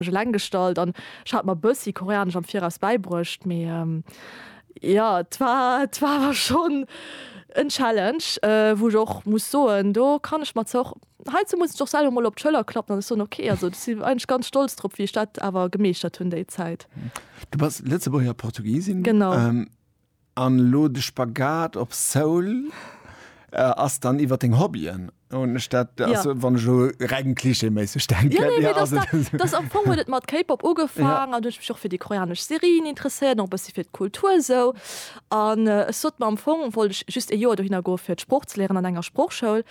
mech eleng gestallt an ech hat mer bëssi Koreanesch am Viraus bäibruecht, mee jo et war et war awer schonn en Challenge, wou ech och muss soen, do kann ech mer zwar och heizou muss ech mech och selwer mol op d'Schëller klappen an ech soen, ok, also ech sinn eigentlech ganz stolz drop, wéi ech dat awer gemeeschtert hunn déi Zäit. Du bass Lëtzebuerger Portugisin. Genau. An lo de Spagat op Soul ass dann iwwer deng Hobbyen? Hunn ech dat, also wann ech elo reng klischeeméisseg denken. Jo, jo, jo, jo, jo. Am Fong huet et mat K-Pop ugefaangen an du huet ech mech och fir déi koreanesch Serien interesséiert, och e bëssi fir d'Kultur esou. An ech sot mer, am Fong wollt ech just ee Joer dohinner goe fir d'Sprooch ze léieren an enger Sproochschoul.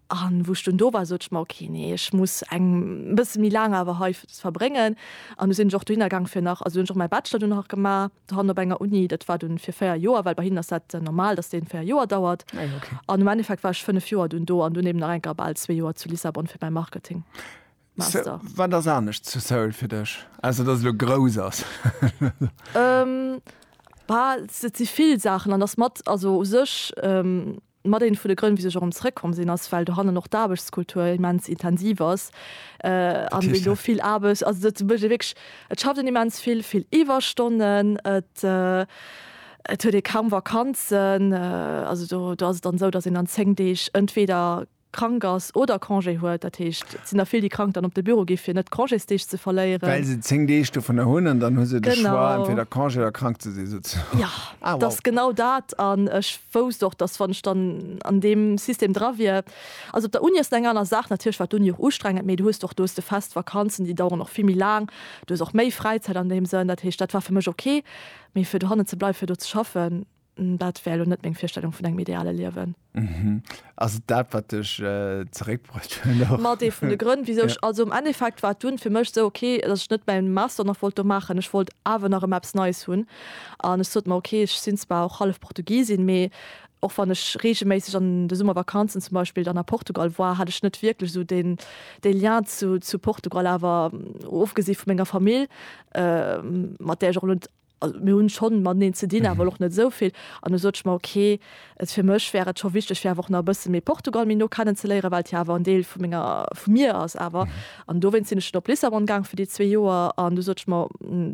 An wou ech dunn do war, sot ech mer, ok, nee, ech muss eng e bësse méi laang awer hei verbréngen. An du sinn ech och dohinner gaang fir nach, also hunn ech och mäi Bachelor dunn nach gemaach dohannen op enger Uni. Dat war dunn fir 4 Joer, well bei hinnen ass dat normal, datt deen 4 Joer dauert. An um Endeffekt war ech 5 Joer dunn do an dunn eben nach enker bal zwee Joer zu Lissabon fir mäi Marketingmaster. Wat ass anescht zu Seoul fir dech, ausser datt et elo grouss ass? Bah, et si vill Saachen an ass mat, also u sech, Mat een vun de Grënn wisou ech och erëm zrëckkomm sinn ass well dohannen och d'Aarbechtskultur immens intensiv ass an wéi elo vill Aarbecht, also dat mécht ee wierklech, et schafft een immens vill, vill Iwwerstonnen, et et huet ee kaum Vakanzen, also do do ass et dann esou, datt een an 10 Deeg entweder krank ass oder Congé huet. Dat heescht, et sinn der vill déi krank dann op de Büro gi fir net Congésdeeg ze verléieren. Well se 10 Deeg dovunner hunn an dann hu se de Choix entweder Congé oder krank ze si souzesoen. Jo, et ass genau dat an ech wousst och, dass wann ech dann an deem System dra wier, also op der Uni ass et eng aner Saach, natierlech war d'Uni och ustrengend, mee du hues och, du hues de fest Vakanzen, déi daueren och vill méi laang, du hues och méi Fräizäit an deem Sënn, dat heescht, dat war fir mech ok, mee fir dohannen ze bleiwen, fir do ze schaffen, dat wär elo net meng Virstellung vun engem ideale Liewen. Ass et dat wat dech zeréck bruecht huet och? Mat ee vun de Grënn wisou ech, also am Endeffekt war et dunn fir mech sou ok, dass ech net mäin Master nach wollt do maachen, ech wollt awer nach ëmmer eppes Neies hunn an ech sot mer ok, ech sinn zwar och hallef Portugisin, mee och wann ech reegelméisseg an de Summervakanzen zum Beispill dann a Portugal war, hat ech net wierklech sou deen dee Lien zu zu Portugal, awer ofgesi vu menger Famill, mat där ech och elo net Also mir hunn schonn mateneen ze dinn, awer och net esou vill. An du sot ech mer, okay, et fir mech wär et scho wichteg, fir awer och nach e bësse méi Portugal méi no kennen ze léieren, well et jo awer en Deel vu menger, vu mir ass awer. An dowéinst sinn ech dann op Lissabon gaang fir déi zwee Joer. An du sot ech mer,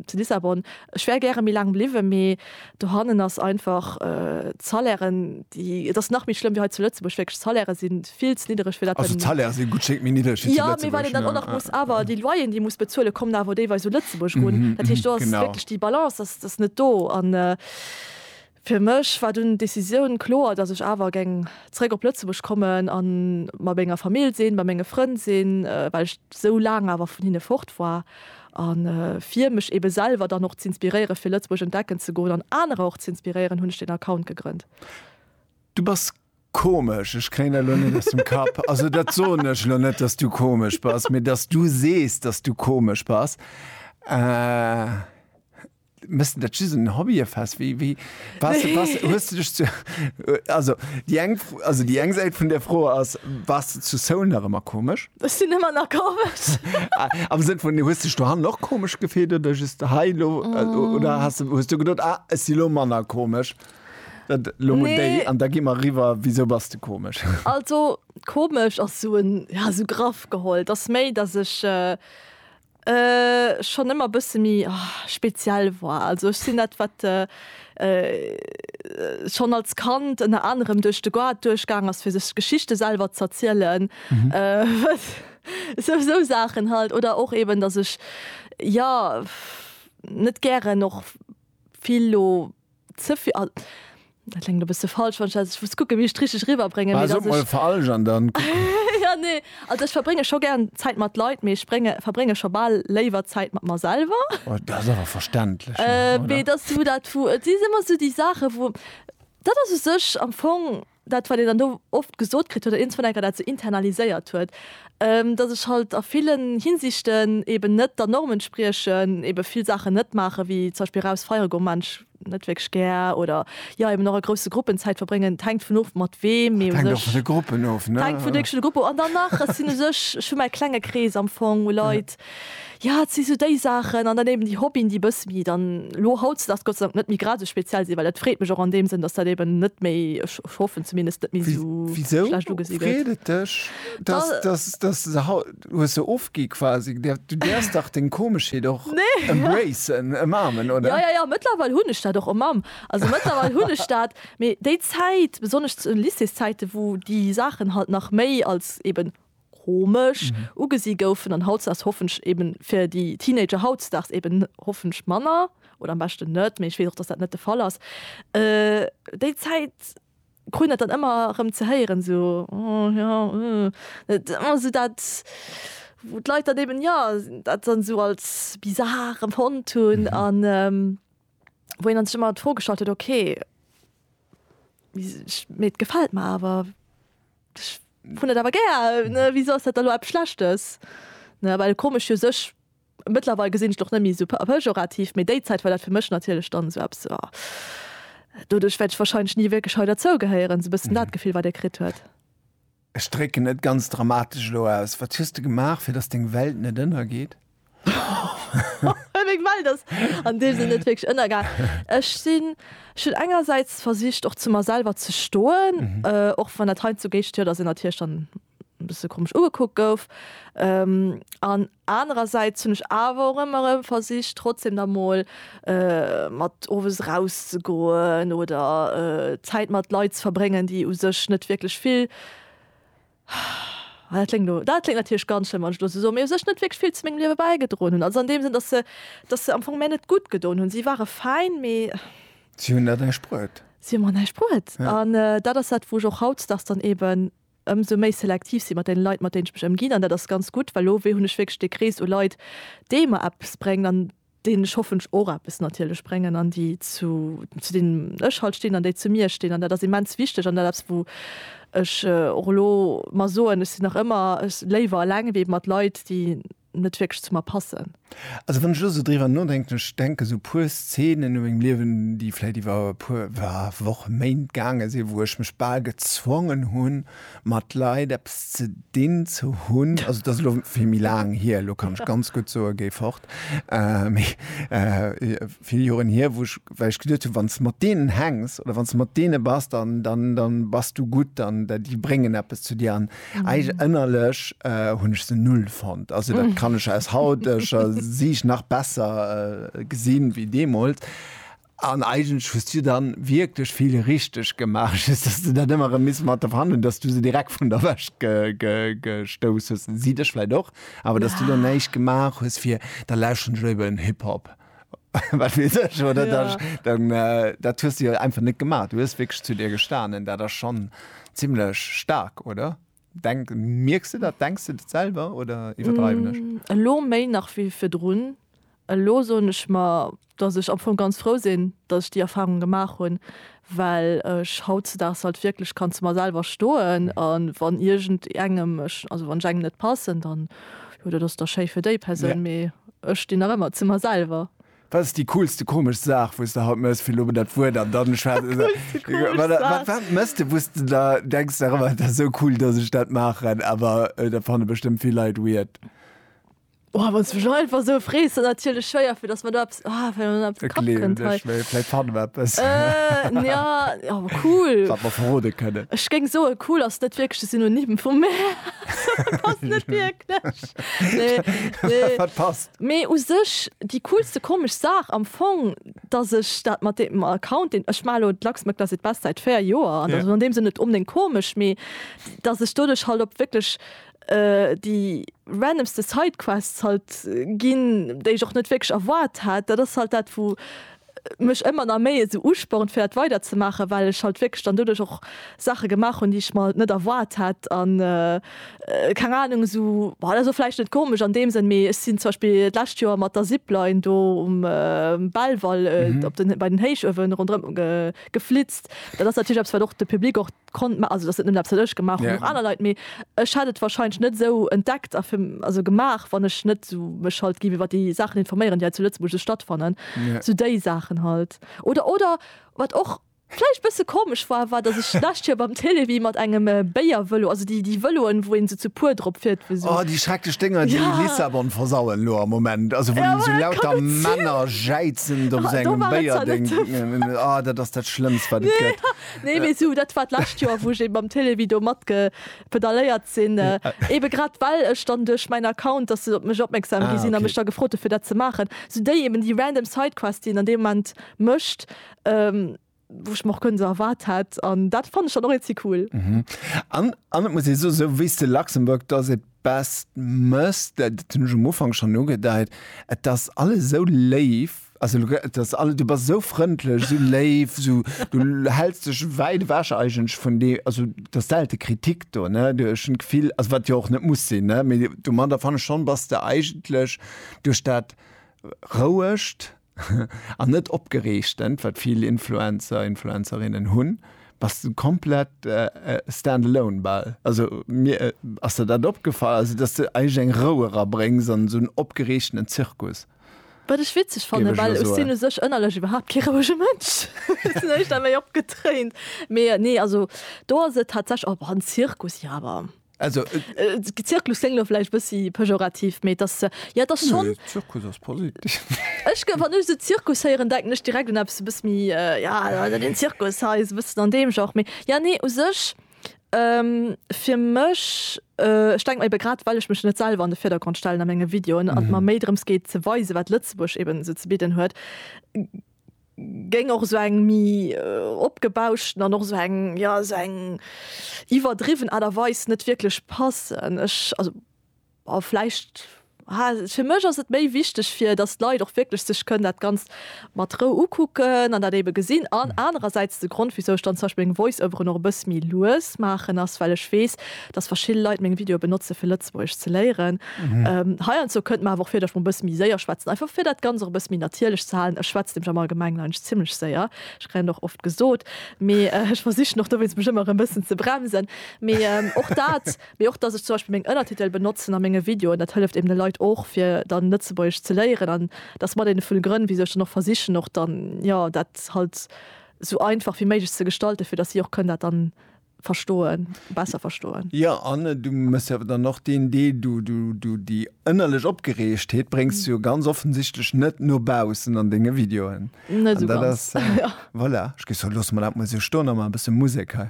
zu Lissabon, ech wär gäre méi laang bliwwen, mee dohannen ass einfach d'Salairen, déi, et ass nach méi schlëmm wéi hei zu Lëtzebuerg, wierklech d'Salairen sinn vill ze niddereg fir dat also d'Salaire si gutt Schéck méi niddereg fir jo mee wann een dann och nach muss awer déi Loyeren déi muss bezuele kommen awer déiweis u Lëtzebuerg run dat heescht do ass wierklech déi Balance ass ass net do an fir mech war dunn d'Decisioun kloer datt ech awer geng zréck op Lëtzebuerg kommen a mat menger Famill sinn bei menge Frënn sinn well ech sou laang awer vun hinne fort war a fir mech ebe selwer dann och z'inspiréiere fir Lëtzebuerg entdecken ze goen an anerer och z'inspiréieren hunn ech deen Account gegrënnt. Du bass Komesch, ech kréien dat elo net aus dem Kapp. Also dat soen ech elo net, dass du komesch bass, mee dass du sees, dass du komesch bass. Äh. Mëssen dat just en Hobbye fest? Wéi, wéi, bass, bass, hues du dech zu, also déi eng, also déi eng Säit vun der Fro ass, bass de zu Seoul nach ëmmer komesch? Ech sinn ëmmer nach komesch. Am Sënn vun, hues dech dohannen och komesch gefillt oder just hei elo? Oder has, hues du gedoot, ah, ech si lo manner komesch? Dat lo mol déi, an da gi mer eriwwer, wisou bass de komesch? Also komesch ass esou en, ja esou graff geholl, et ass méi, datt ech schonn ëmmer e bësse méi speziell war. Also ech sinn dat, wat schonn als Kand ënner anerem duerch de Goart duerchgaang ass, fir sech Geschichte selwer z'erzielen, esou esou Saachen halt. Oder och eben, datt ech, jo, net gären och vill lo. Ze vill Al Dat kléngt e bësse falsch, wann ech dat. Ech muss kucken, wéi ech et richteg eriwwerbréngen, mee Bah, sot dass mol ech. falsch an dann kucken mer. Jo, nee. Also ech verbrénge scho gär Zäit mat Leit, mee ech brénge, verbrénge scho bal léiwer Zäit mat mer selwer. Oh, dat ass awer verständlech, Mee oder? et ass esou dat, wou. Et si ëmmer esou déi Saachen, wou. Dat ass u sech am Fong. dat wat een dann do oft gesot kritt huet, oder iergendwann enker dat esou internaliséiert huet, datt ech halt a villen Hinsichten eben net der Norm entspriechen, eben vill Saachen net maachen, wéi zum Beispill eraus feiere goen, maan ech net wierklech gär, oder jo eben och a grousse Gruppen Zäit verbréngen. Et hänkt vun of mat weem, mee u sech. Et hänkt och vun de Gruppen of, ne? Et hänkt vun de Gruppen of. An dann nach, ech sinn u sech, ech hu mäi klenge Krees am Fong u Leit, Ja, et si sou déi Saachen. An dann eben déi Hobbyen, déi e bësse méi dann elo hautdesdaags Gott sei Dank net méi grad esou speziell sinn, well dat freet mech och an deem Sënn, dass dat eben net méi, ech hoffen zumindest, net méi esou schlecht ugesi gëtt. Wisou freet et dech, dass, dass, dass se haut, du hues se ofgi quasi, du däerfs dach deng Komeschheet och embracen, ëmarmen, oder? Jo, jo, jo, mëttlerweil hunn ech dat och ëmarm. Also mëttlerweil hunn ech dat. Mee déi Zäit, besonnesch zu Lycéeszäiten, wou déi Saachen halt nach méi als eben komesch ugesi goufen an hautdesdaags hoffench eben fir déi Teenager hautdesdaags eben hoffench manner oder am beschten net, mee ech weess och, dass dat net de Fall ass, déi Zäit kruten dat dann ëmmer erëm ze héieren, sou, oh jo, uh. Et ëmmer sou dat, wou d'Leit dann eben, jo, dat dann sou als bizar empfonnt hunn an. wou een dann sech ëmmer d'Fro gestallt huet, ok, mee et gefält mer awer, ech hunn dat awer gär, wisou ass dat da elo eppes Schlechtes? Well komesch fir sech, mëttlerweil gesinn ech et och net méi esou pejorativ, mee déi Zäit war dat fir mech natierlech dann esou eppes, oh, doduerch wäert ech warscheinlech ni wierklech hei derzougehéieren, esou e bëssen dat Gefill, wat ee kritt huet. Ech drécken et ganz dramatesch elo aus, Wat hues de gemaach, fir datt deng Welt net ënnergeet? Meng Welt ass an deem Sënn net wierklech ënnergaang. Ech sinn, ech hunn engersäits versicht, och zu mer selwer ze stoen, och wann dat heiandsdo Géigestierler sinn, natierlech dann e bësse komesch ugekuckt gouf. An Anerersäits hunn ech awer och ëmmer erëm versicht, trotzdem da mol mat owes erauszegoen oder Zäit mat Leit ze verbréngen, déi u sech net wierklech vill, ah, dat kléngt elo, dat kléngt natierlech ganz schlëmm, wann ech elo esou soen, mee u sech net wierklech vill zu mengem Liewe bäigedroen hunn. Also an deem Sënn, dass se, dass se am Fong mär net gutt gedoen hunn. Si ware fäin, mee. Si hunn der näischt bruet. Si hu mer näischt bruet. An dat ass dat, wou ech och hautdesdaags dann eeben ëmsou méi selektiv sinn mat den Leit mat denen ech mech ëmginn an dat ass ganz gutt, well lo hunn ech wierklech de Krees u Leit dee mer eppes bréngt an denen ech hoffentlech och eppes natierlech bréngen an déi zu zu denen ech halt stinn an déi zu mir stinn an dat ass immens wichteg an dat eppes wou ech och elo mer soen, ech sinn nach ëmmer léiwer eleng wéi mat Leit déi net wierklech zu mer passen. Also wann ech elo sou driwwer nodenken, ech denke sou puer Szenen u mengem Liewen, déi vläit iwwer e puer Wochen, Méint gaange sinn, wou ech mech bal gezwongen hunn, mat Leit eppes ze dinn ze hunn. Also et ass elo vill méi laang hier, elo kann ech ganz gutt soen, géi fort. Mee vill Joren hier, wou ech, well ech geduet hunn, wann s de mat deenen hänks oder wann s de mat deene bass, dann bass du gutt, dann déi bréngen eppes zu dir. Eig ënnerlech hunn ech se null fonnt. Also dat kann ech aus hauteger Siicht nach besser äh, gesinn wéi deemools. An eigentlech hues du dann wierklech vill richteg gemaach, just dass du dat ëmmer erëm missen mat der verhandelen, dass du se direkt vun der Wäscht ge ge gestouss hues. Si dech vläit och, awer dass du dann näischt gemaach hues fir, da lauschteren ech léiwer en Hip-Hop. wat wees ech oder ja. das, dann äh, dat hues du ja einfach net gemacht du hues wirklich zu dir gestanen da das schon ziemlich stark oder denk merkst du dat denkst du dat selber oder iwwerdreiwen ech mm, elo méi nach wie fir drun elo so nech mal dass ich am vu ganz froh sinn dass ich die erfahrung gemacht hun well ech hautzedaags halt wierklech kann zu mer selwer stoen a wann iergend engem ech, also wann ech engem net passen, dann jo, dat ass da schéi fir déi Persoun, yeah. mee ech stinn nach ëmmer zu mer selwer. Wat ass déi coolste komesch Saach wou s de haut mëss? Fir elo mol dat Wuert an dann schwätzen se wat, wat, wat mëss de wou s de da denks nach ëmmer dat ass esou cool datt ech dat maachen, awer dat fanne bestëmmt vill Leit weird? Oh, wann du einfach so frees natierlech schwéier fir dass man da ja, oh, cool verrode kënne Ech géng so cool ass net wierklech de Synonym vu mee u sech déi coolste komesch Saach am Fong, datt ech dat mat deem Account deen ech mar elo d'Luxembourg does it best säit 4 Joer an dat ass an deem Sënn net onbdéngt komesch, mee datt ech doduerch halt op wierklech déi randomste Sidequests halt ginn, déi ech och net wierklech erwaart hat. Dat ass halt dat, wou mech ëmmer nach méi esou uspornt fir dat weider ze maachen, well ech halt wierklech dann doduerch och Saache gemaach hunn, déi ech mer net erwaart hat. An keng Ahnung, esou, dat ass elo vläicht net komesch an deem Sënn, mee ech sinn zum Beispill d'lescht Joer mat der Zipline do um Belval op den, bei den Héichuewen ronderëm geflitzt. Dat ass natierlech eppes wat och de Public och. konnt ma also dass et net eppes wat ech gemaach hunn, och aner Leit, mee ech hätt et wahrscheinlech net esou entdeckt a fir also gemaach, wann ech net esou mech halt géif iwwert déi Saachen informéieren, déi hei zu Lëtzebuerg esou stattfannen, esou déi Saachen halt. Oder, oder wat och vläicht bësse komesch war, war dass ech d'lescht Joer beim Télévie mat engem Béiervëlo, also déi déi Vëloen wou een esou zu puer drop fiert, wou esou. Oh déi schrecklech Dénger déi Lissabon versauen elo am Moment, also wou esou lauter Männer jäizen op esou engem Béierdéng, oh dat ass dat schlëmmst wat et gëtt. Nee mee sou dat war d'lescht Joer wou ech eben mam Télévie do mat ge pedaléiert sinn, eben grad well ech dann duerch mäin Account, dass se op mech opmerksam gi sinn a mech da gefrot hu fir dat ze maachen, sou déi eben déi random Sidequest déi een an deem Moment mécht, wou ech mer och guer net erwaart hätt an dat fannen ech dann och iinzi cool. An an et muss ee soen, sou wéis de Luxembourg does it best mëss, dat hunn ech um Ufank schonn ugedeit, et ass alles esou léif, Also du gëtt dës all, du bass esou frëndlech, esou léif, esou, du häls dech wäit ewech eigentlech vun de, also du hues selte Kritik do, ne, du, ech hunn d'Gefill, also wat jo och net muss sinn, ne, mee domadder fanne ech schonn, bass de eigentlech duerch dat rouegt an net opgereegtent, wat vill Influencer, Influencerinnen hunn, bass de komplett stand alone bal. Also mir, ass der dat opgefall, also datt s de eigentlech eng Rou erabréngs an esou en opgereegtenen Zirkus? Wat ech witzeg fannen, Géif ech well elo ech soen. sinn u sech ënnerlech iwwerhaapt kee rouege Mënsch, hunn ech da méi opgetréint. Mee nee, also do ass et tatsächlech, oh, en Zirkus, jo awer, Also, Zirklus kléngt elo vläicht e bëssi pejorativ, mee et ass, jo et ass schonn, nee, Zirkus ass positiv. Ech gëtt, wann ech esou Zirkus héieren, denken ech direkt un eppes e bësse méi, jo, also den Zirkus hei, sou e bëssen an deem Genre. Mee jo, nee, u sech, Fir mech, ech denken eben grad well ech mech net selwer an de Virdergrond stellen a menge Videoen an et mer méi drëms geet ze weisen wat Lëtzebuerg eben esou ze bidden huet, géing och esou eng méi opgebauschten an och esou eng jo esou eng iwwerdriwwen Aart a Weis net wierklech passen. Ech also. A vläicht, ha, fir mech ass et méi wichteg, fir datt d'Leit och wierklech sech kënnen dat Ganzt mat Rou ukucken an dat ebe gesinn. An anerersäits, de Grond, wéisou ech dann zum Beispill meng Voice-Overen och e bësse méi lues maachen, ass, well ech weess, datt verschidde Leit meng Videoe benotzen, fir Lëtzebuergesch ze léieren. Heiandsdo kënnt mer awer och vir, datt ech mol e bësse méi séier schwätzen, einfach fir dat Ganzt och e bësse méi natierlech ze halen. Ech schwätzt nämlech am Allgemengen eigentlech zimlech séier, ech kréien dat och oft gesot, mee ech versichen och dowéinst, mech ëmmer erëm e bëssen ze bremsen. Mee och dat Mee och dass ech zum Beispill meng Ënnertitel benotzen a menge Videoen, dat hëlleft eben de Leit och fir dann Lëtzebuergesch ze léieren. An dat ass mat een vun de Grënn wisou ech dann och versichen och dann jo dat halt sou einfach wéi méiglech ze gestalten, fir dass si och kënnen dat dann verstoen, besser verstoen. Jo, an du méchs jo awer dann och deen Deel, du du du déi ënnerlech Opgereegtheet bréngs du jo ganz offensichtlech net no baussen an denge Videoen. Net esou ganz, jo. Voilà, ech géif soen, loosse mer dat mol esou stoen a man e bësse Musek hei.